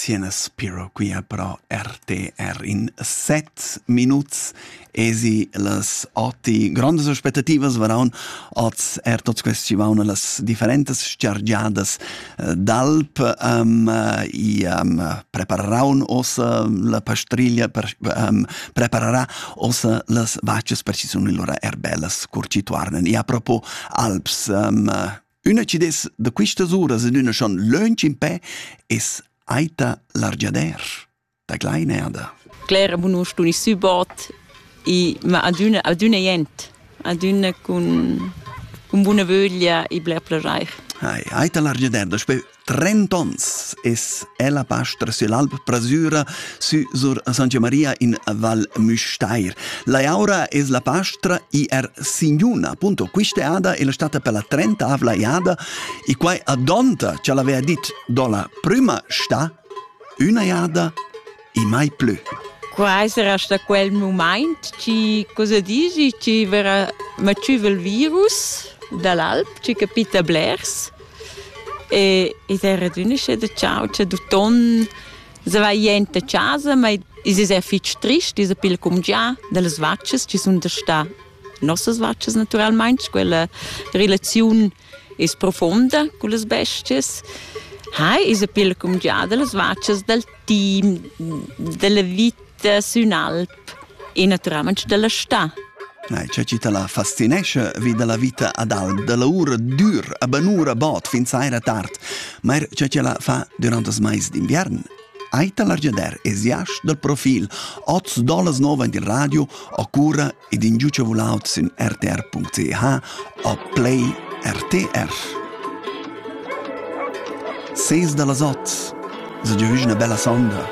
Siena spiro quia pro RTR in set minuts esi las oti grandas aspettativas varaun oz er tots questi ci vaun las differentas chargiadas eh, d'alp um, i um, preparaun ossa la pastriglia per, um, prepararà ossa las vaccias per ci sun lura er bellas curcituarnen e a propo alps um, Üna chi dess da quistas uras in üna schon lönch impè es Aita l'argiader da Gleinerda. Claire Bunust uni subot e ma adüna adüna jent, adüna cun cun buna vöglia e bler plaschair. Hai, Aita l'argiader, da spö Trent'onns es ella pastra süll'alp Prasüra sü sur Santa Maria in Val Müstair. Laiaura es la pastra er signuna, appunto quist'eada è la stata per la trentavla eada e quai adonta cha l'avea dit do la prüma sta üna eada e mai plü. Quai sarà sta quel mumaint chi cosa dici chi verrà matschüva il virus da l'alp, chi capita blers e id è radünisce da ciao cha d'uton za va jent a casa, ma i's es er fich trist, i's pigl cumgià da las vachas chi sun da stà nossas vachas natüralmaing, quella relaziun es profonda cullas bestias ha esa pella cumgià da las vachas dal team, della vita sün alp e natüralmaing della stà. Nei, c'è citta la fascinesce vi della vita ad alp, della ura dur, a banura bot fin saira tard, ma er c'è la fa durant das mais d'inviern. Aita l'argiader es jasch dal profil, oz dolas nova in il radio, o cura ed ingiucha vulaut sün rtr.ch o play RTR. Ses da las ot, so giavüsch üna bella sonda.